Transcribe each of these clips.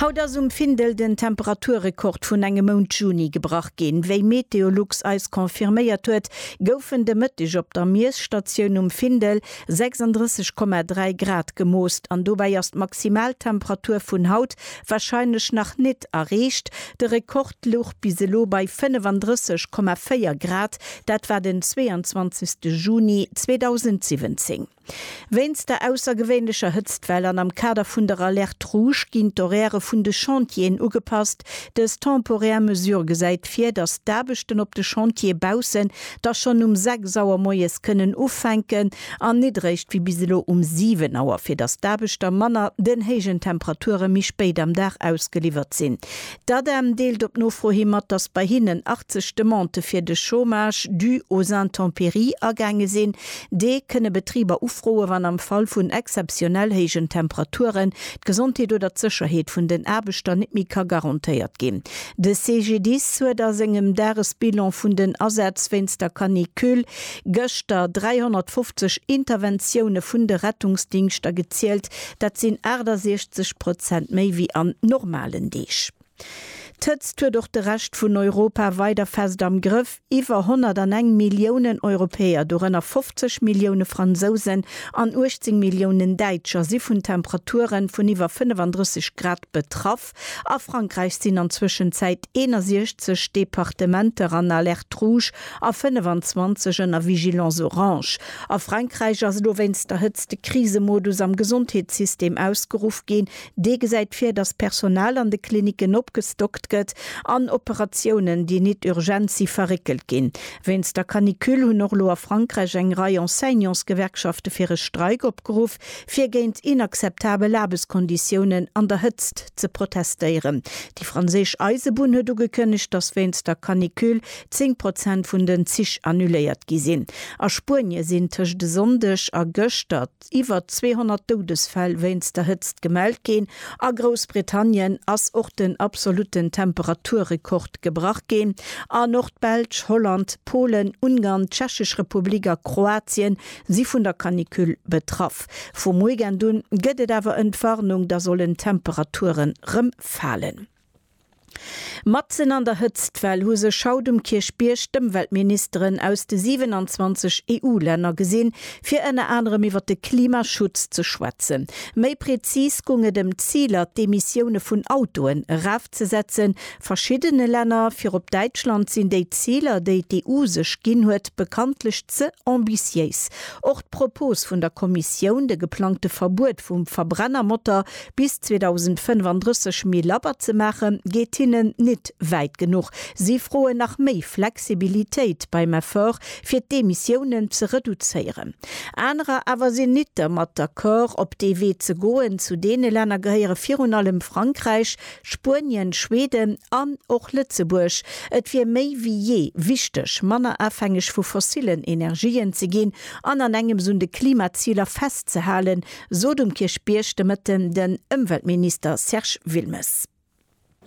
Haut ass um Findel den Temperaturrekord vun engem Mount Juni gebrach ginn. Wéi Meteolux eis confirméiert huet, goufen de Mëtteg op der Miesstatioun um Findel 36,3 Grad gemoost an dobäi ass d'Maximaltemperatur vun haut warscheinlech nach nit erreecht. De Rekord louch bis elo bei 35,4 Grad, dat war den 22. Juni 2017. Wéinst der aussergewéinlecher Hëtztwell an am Kader vun der Alerte Rouge ginn d'Horairë vun de Chantieren ugepasst. Dës temporär Mesure gesäit vir, datt d'Aarbechten op de Chantiere baussen da schonn um 6 Auer moies kënnen ufänken an nit eréischt wéi bis elo um 7 Auer, fir datt d'Aarbechter manner den héijen Temperature méi spéit am Dag ausgeliwwert sinn. D'ADEM deelt op Nofro hi mat, datt bei hinnen 80 Demandë fir de Chômage dû aux intempéries agaange sinn. Dee kënne Betriber ufroe wann am Fall vun exzeptionell héijen Temperaturen d'Gesondheet oder d'Sécherheet vun den Aarbechter net méi ka garantéiert ginn. De CGDIS huet a sengem Dagesbilan vun den Asätz wéinst der Canicule gëschter 350 Interventioune vun de Rettungsdingschter gezielt, Dat sinn 68 Prozent méi wéi an normalen Deeg. D'Hëtzt huet och de Rescht vun Europa weider fest am Grëff. Iwwer 101 Milliounen Europäer, dorënner 50 Millioune Fransousen an 18 Milliounen Däitscher, si vun Temperaturen vun iwwer 35 Grad betraff. Alerte. A Frankräich sinn an Zwëschenzäit 61 Departementer an Alerte rouge a 25 ënner Vigilance orange. A Frankräich ass elo wéinst der Hëtzt de Krisemodus am Gesondheetssystem ausgeruff ginn. Dee gesäit vir, datt d'Personal an de Klinicken opgestockt gëtt an Operatiounen, déi nit urgent si verréckelt ginn. Wéinst der Canicule hunn och elo a Frankräich eng Rei Enseignantsgewerkschafte fir e Streik opgeruff. fir géint inakzeptabel Aarbechtskonditiounen an der Hëtzt ze protestéieren. Déi franséisch Eisebunn huet ugekënnegt, datt wéinst der Canicule 10 Prozent vun den Zich annuléiert gi sinn. A Spuenie sinn tëscht e Sonndeg a gëschter iwwer 200 Doudesfäll wéinst der Hëtzt gemellt ginn. A Groussbritannien ass och den absolutten Temperaturrekord gebrach ginn. An och d'Belsch, Holland, Polen, Ungarn, d'Tschechesch Republik a Kroatien si vun der Canicule betraff. Vum Weekend un gëtt et awer en d'Warnung, da sollen d'Temperature rëm falen. Matzen an der Hëtztwell hu sech haut um Kierchbierg d'Ëmweltministeren aus de 27 EU-Länner gesinn, fir ënner anerem iwwer de Klimaschutz ze schwätzen. Méi prezis gung et ëm d'Ziler, d'Emissioune vun Autoen erafzesetzen, verschiddene Länner, virop Däitschland, sinn déi Ziler, déi d'EU sech ginn huet, bekanntlech ze ambitiéis. Och d'Propos vun der Kommissioun, de geplangte Verbuet vum Verbrennermotor bis 2035 méi labber ze maachen, geet hinnen nit wäit genuch. Si froen nach méi Flexibilitéit beim Effort, fir d'Emissiounen ze reduzéieren. Anerer awer sinn nit dermat d'accord, op dee Wee ze goen. Zu deene Länner gehéiere virun allem Frankräich, Spuenien, Schweden an och Lëtzebuerg, et wier méi wéi jee wichteg, manner afhängeg vu fossillen Energien ze ginn an an engems un de Klimaziler festzehalen, sot um Kierchbierg de Mëtten den Ëmweltminister Serge Wilmes.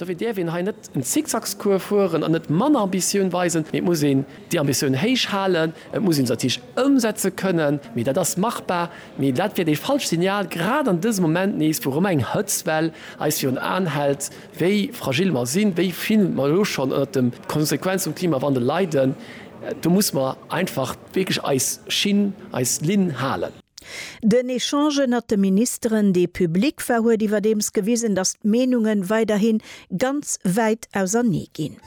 Dofir dierf een hei net en Zickzackscours fueren an net manner Ambitioun weisen, mee et muss een déi Ambitioun héich halen. Et muss een se natierlech ëmsetze kënnen, mee dat ass machbar. Mee dat wier dee falscht Signal, grad an dësem Moment nees, wou erëm eng Hëtztwell eis virun den Aen hält, wéi fragil mer sinn, wéi vill mer elo schonn ënnert de Konsequenze vum Klimawandel leiden. Do muss mer einfach wierklech eis Schinn, eis Linn halen. Den Echange ënnert de Ministeren, dee public war, huet iwwerdeems gewisen, datt d'Meenunge weiderhi ganz wäit ausernee ginn.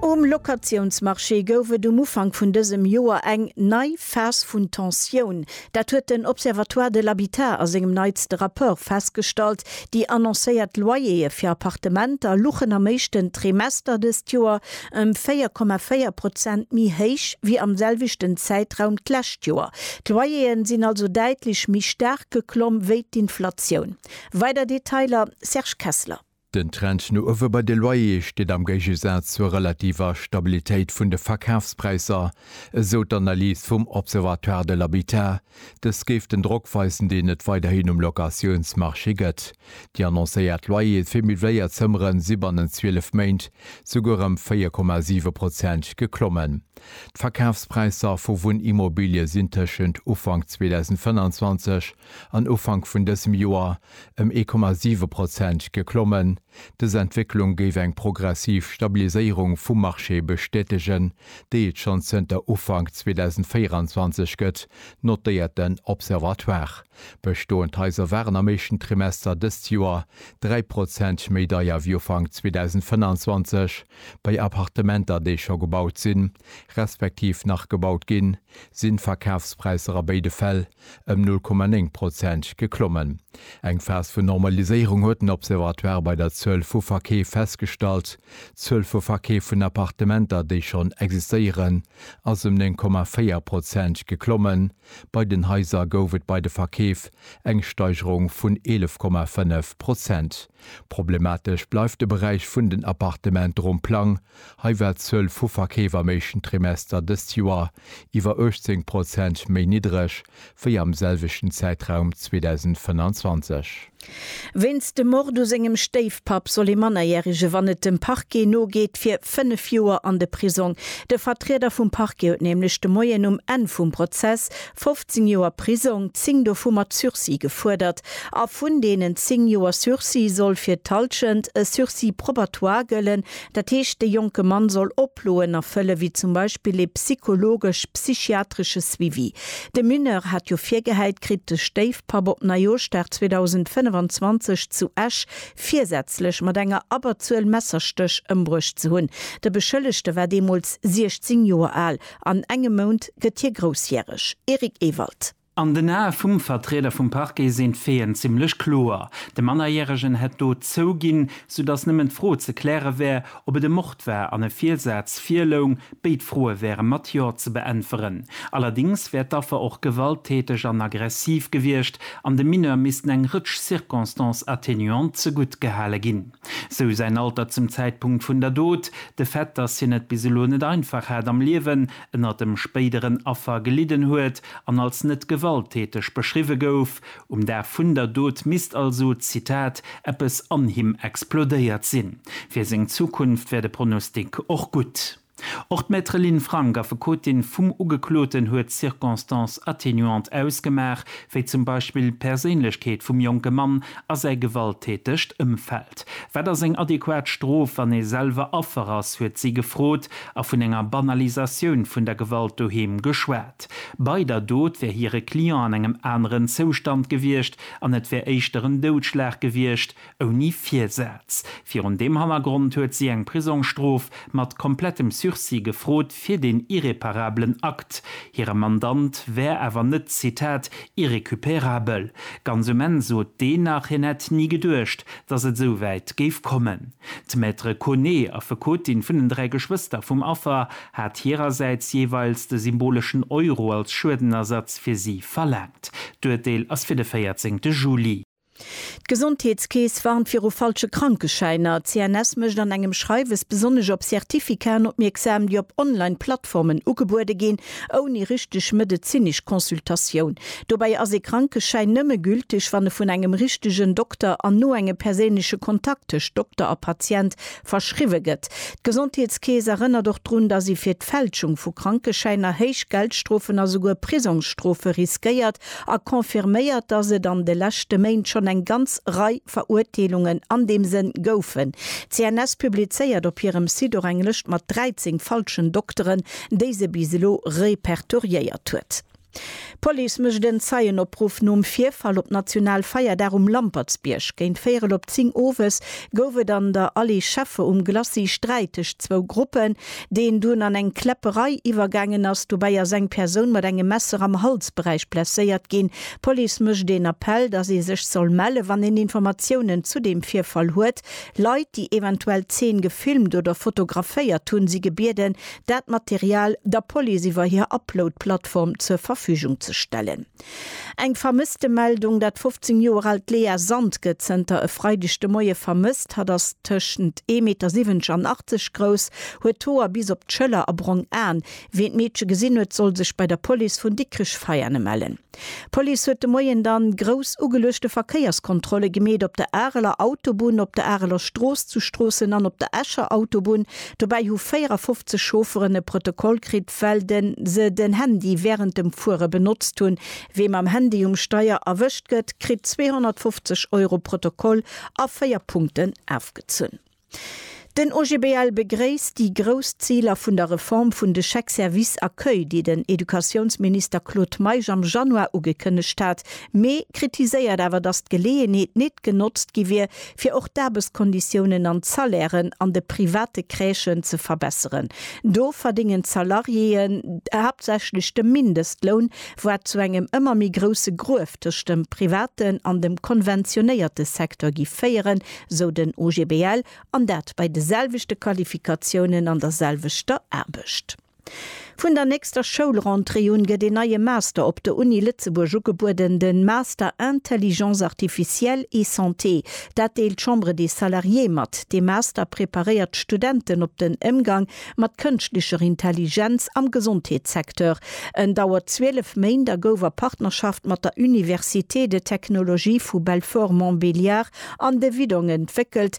Um Locatiounsmarché gouf et um Ufank vun dësem Joer eng nei Phas vun Tensioun. Dat huet den Observatoire de l'habitat a sengem neitste Rapport festgestallt. Déi annoncéiert Loyerë fir Appartementer luchen am éischten Trimester dëst Joer ëm 4,4 Prozent méi héich wéi am selwechten Zäitraum d'lescht Joer. D'Loyer'e sinn also däitlech méi staark geklomm wéi d'Inflatioun. Weider Detailer, Serge Kessler. Den Trend no uewe bei de Loyer'e steet am Géigesaz zur relativer Stabilitéit vun de Verkafspräisser, esou d'Analys vum Observatoire de l'habitat, Dëst géif den Drock weisen, deen et weiderhin um Locatiounsmarché gëtt. Déi annoncéiert Loyere fir meubléiert Zëmmere si bannent 12 Méint souguer ëm 4,7 Prozent geklommen. D'Verkafspräisser vu Wunnimmobilie sinn tëschent Ufank 2025 an Ufank vun dësem Joer ëm 1,7 Prozent geklommen. Dës Entwécklung géif eng progressiv Stabiliséierung vum Marché bestätegen, déi et schonn zënter Ufank 2024 gëtt, notéiert den Observatoire. Bestoend Haiser waren am éischten Trimester dëst Joer 3 Prozent méi deier wéi Ufank 2025. Bei Appartementer, déi scho gebaut sinn, respektiv nach gebaut ginn, sinn d'Verkafspräisser a béide Fäll ëm 0,9 Prozent geklommen. Eng Phas vun Normaliséierung huet den Observatoire bei der Zuel vu Verkeef festgestallt. D'Zuel vu Verkeef vun Appartementer, déi schonn existéieren, ass ëm 9,4 Prozent geklommen. Bei den Haiser gouf et bei de Verkeef eng Steigerung vun 11,5 Prozent. Problematesch bleift de Beräich vun den Appartement ronn Plang, Hei war d'Zuel vu Verkeef am éischten Trimester dëst Joer iwwer 18 Prozent méi niddereg wéi am selwechten Zäitraum 2025. Wéinst dem Mord u sengem Stéifpapp soll ee Mannerjärege, wann et dem Parquet nogeet, fir 5 Joer an de Prisong. De Vertrieder vum Parquet huet nämlech de Moien um Enn vum Prozess 15 Joer Prisong, 10 dovu mat Sursis, gefuerdert. A vun deenen 10 Joer Sursis soll fir d'Halschent e Sursis probatoire gëllen, Dat heescht, de jonke Mann soll Oploen erfëllen, wéi zum Beispill ee psychologesch, psychiatresche Suivi. De Mineur hat jo virgehäit kritt, de Stéifpapp op Neijooschdag 2025 zu Esch virsätzlech mat enger Abberzuel Messerstéch ëmbruecht ze hunn. De Beschëllegte war deemools 16 Joer al. An engem Mount gëtt hie groussjäreg. Eric Ewald. An den Ae vum Vertrieder vum Parquet sinn d'Feeën zimmlech kloer, de Mannerjäregen hätt d'Dot zouginn, soudass nëmmen d'Fro ze kläre wär, ob et e Mord war an e Virsaz virloung. Béid Froe wäre mat Jo ze beäntweren. Allerdéngs wär d'Affer och gewalttäteg an aggressiv gewiescht an dem Mineur missten eng Rëtsch Circonstances atténuantes zegutt gehale ginn, sou säin Alter zum Zäitpunkt vun der Dot, de Fait, dass hien et bis elo net einfach hat am Liewen ënner dem spéideren Affer gelidden huet an als net gewalttäteg beschriwwe gouf. Um Dag vun der Dot misst also, Zitat, eppes an him explodéiert sinn. Fir seng Zukunft wär de Pronostic och gutt. Och d'Maître Lynn Frank, Affekotin vum Ugekloten, huet d'Circonstances atténuantes ausgemaach, wéi zum Beispill d'Perséinlechkeet vum jonke Mann a säi gewalttätegt Ëmfeld. Wat ass eng adequat Strof, wann ee selwer Affer ass? huet si gefrot a vun enger Banalisatioun vun der Gewalt doheem geschwat. Bei der Dot wär hire Client an engem aneren Zoustand gewiescht an et wär éischter en Doudschlag gewiescht, ouni Virsaz. Virun deem Hannergrond huet si eng Prisongsstrof mat komplettem Sursis gefrot. fir deen irreparablen Akt. Hire Mandant wär awer net, Zitat, irrécupérabel. Ganz um Enn sot deen nach, hien hätt ni geduecht, datt et esou wäit géif kommen. D'Maître Koné, Affekotin vun den dräi Geschwëster vum Affer, hat hirersäits jeeweils de symboleschen Euro als Schuedenersatz fir si verlaangt. D'Urteel ass fir de 14 Juli. D'Gesondheetskeess warnt viru falsche Krankeschäiner. D'CNS mécht an engem Schreiwes besonnesch op Certificaten opmierksam, déi op Online-Plattformen ugebuede ginn, ouni richteg medezinesch Consultatioun. Dobäi ass ee Krankeschäin nëmme gülteg, wann e vun engem richtegen Dokter an no engem perséinleche Kontakt tëscht Dokter a Patient verschriwwe gëtt. D'Gesondheetskeess erënnert och drun, dass ee fir d'Fälschung vu Krankeschäiner héich Geldstrofen a souguer Prisongsstrofe riskéiert, a confirméiert, datt et an de leschte Méint schonn eng ganz Rei Verurteelungen an deem Sënn goufen. D'CNS publizéiert op hirem Site och eng Lëscht mat 13 falschen Dokteren, déi se bis elo repertoriéiert huet. D'Police mécht en Zeienopruff nom Virfall op National Feierdag um Lampertsbierg. Géint véierel op 10 owes gouf et an der Allée Scheffe um Glacis Sträit tëscht zwou Gruppen. deen dunn an eng Kläpperei iwwergaangen ass. Dobäi ass eng Persoun mat engem Messer am Halsberäich blesséiert ginn. D'Police mécht een Appell, dass ee sech soll melle wann een Informatiounen zu deem Virfall huet. Leit, déi eventuell d'Zeen gefilmt oder fotograféiert hunn, si gebieden, dat Material der Police iwwer hir Upload-Plattform zur Verfügung ze stellen. Eng Vermësstemeldung, Dat 15 Joer aalt Léa Sand gëtt zënter e Freideg de Moie vermësst. Hatt ass tëschent 1,70 Meter an 80 grouss, huet d'Hoer bis op d'Schëller a brong Aen. Wien d'Meedche gesinn huet, soll sech bei der Police vun Dikrech-Veiane mellen. D'Police huet de Moien dann grouss ugeluechte Verkéierskontrolle gemeet, op der Areler Autobunn, op der Areler Strooss, zu Stroossen an op der Escher Autobunn. Dobäi hu 54 Chaufferen e Protokoll kritt, well de se den Handy wärend dem Fuere benotzt hunn. Wee mam Handy um Steier erwëscht gëtt, kritt 250 Euro Protokoll a 4 Punkten afgezunn. Den OGBL begréisst déi grouss Ziler vun der Reform vun de Chèques services accueil, déi den Educatiounsminister Claude Meisch am Januar ugekënnegt hat, mee kritiséiert awer, datt d'Geleeënheet nit genotzt gi wier, fir och d'Aarbechtskonditiounen an d'Salairen an de private Crèchen ze verbesseren. Do verdéngen d'Salariéeën haaptsächlech de Mindestloun, wat zu engem ëmmer méi grousse Gruef tëscht dem privaten an dem konventionéierte Secteur gi féieren, sou den OGBL, an dat bei de selwechte Qualifikatiounen an der selwechter Aarbecht. Vun der nächster Schoulrentrée un gëtt een neie Master op der Uni Lëtzebuerg ugebueden, de Master Intelligence artificielle et Santé. Dat deelt d'Chambre des Salariés mat. Dee Master preparéiert d'Studenten op den Émgang mat kënschtlecher Intelligenz am Gesondheetssecteur. En dauert 12 Méint a gouf a Partnerschaft mat der Université de Technologie vu Belfort-Montbéliard an de Widdong entwéckelt,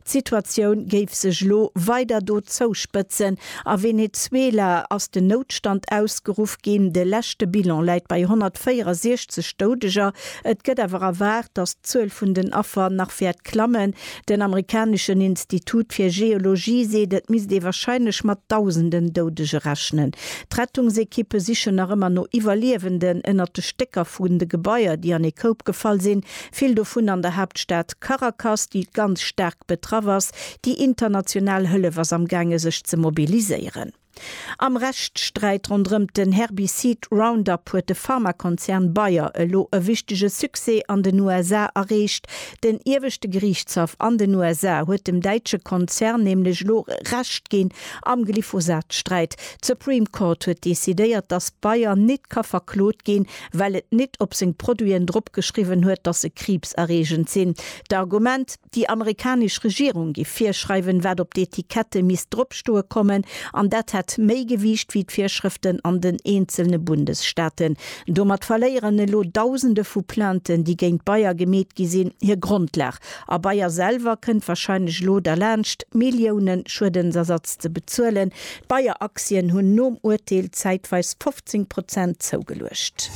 D'Situatioun géif sech elo weider do zouspëtzen. A Venezuela ass den Noutstand ausgeruff ginn. De leschte Bilan läit bei 164 Doudeger. Et gëtt awer erwaart, datt d'Zuel vun den Affer nach wäert klammen. Den amerikaneschen Institut fir Geologie seet, et misst ee warscheinlech mat Dausenden Doudege rechnen. D'Rettungsekippe sichen nach ëmmer no Iwwerliewenden ënnert de Stécker vun de Gebaier, déi an ee Koup gefall sinn. vill dovun an der Haaptstad Caracas, déi ganz staark betraff ass. Déi international Hëllef ass am gaange sech ze mobiliséieren. Am Rechtssträit ronderëmt den Herbicid Roundup huet de Pharmakonzern Bayer elo e wichtege Succès an den USA erreecht. Den ieweschte Geriichtshaff an den USA huet dem däitsche Konzern nämlech elo Recht ginn am Glyphosat-Sträit. D'Supreme Court huet decidéiert, datt Bayer nit ka verklot ginn, well et nit op seng Produiten drop geschriwwen huet, dass se kriibserreegend sinn. D'Argument, déi amerikanesch Regierung giff virschreiwen, wat op d'Etikette misst dropstoe kommen, an dat hätt méi Gewiicht wéi d'Virschrëften an den eenzelne Bundesstaaten. Domat verléieren elo Dausende vu Plainten, déi géint Bayer gemeet gi sinn, hir Grondlag. A Bayer selwer kënnt wahrscheinlech elo derlaanscht, Milliounen Schuedensersatz ze bezuelen, D'Bayer-Aktien hunn nom Urteel zäitweis 15 Prozent zougeluecht.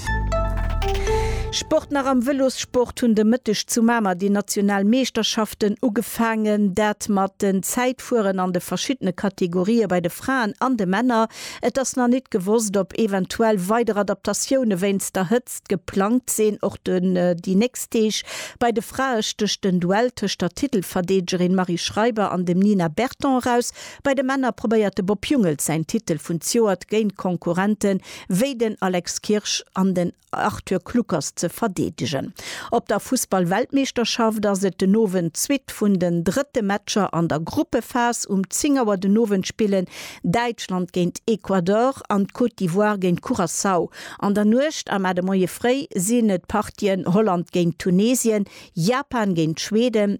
Sport Nach am Vëlossport hunn de Mëtteg zu Mamer déi national Meeschterschaften ugefaangen. Dat mat den Zäitfueren an de verschiddene Kategorië bei de Fraen an de Männer. Et ass nach nit gewosst, ob eventuell weider Adaptatioune wéinst der Hëtzt geplangt sinn. Och déi nächst Deeg bei de Frae stécht den Duell tëscht der Titelverdeedegerin Marie Schreiber an dem Nina Berton eraus. Bei de Männer probéiert de Bob Jungels säin Titel vun d'Joert géint Konkurrente wéi den Alex Kirsch an den Arthur Kluckers ze verdeedegen. Op der Fussballweltmeeschterschaft ass et den Owend d'Suite vun den drëtte Matcher an der Gruppephas. Um 10 Auer den Owend spillen Däitschland géint Ecuador an d'Côte d'Ivoire géint Curaçao. An der Nuecht a mar de Moie fréi sinn et d'Partien Holland géint Tunesien, Japan géint Schweden,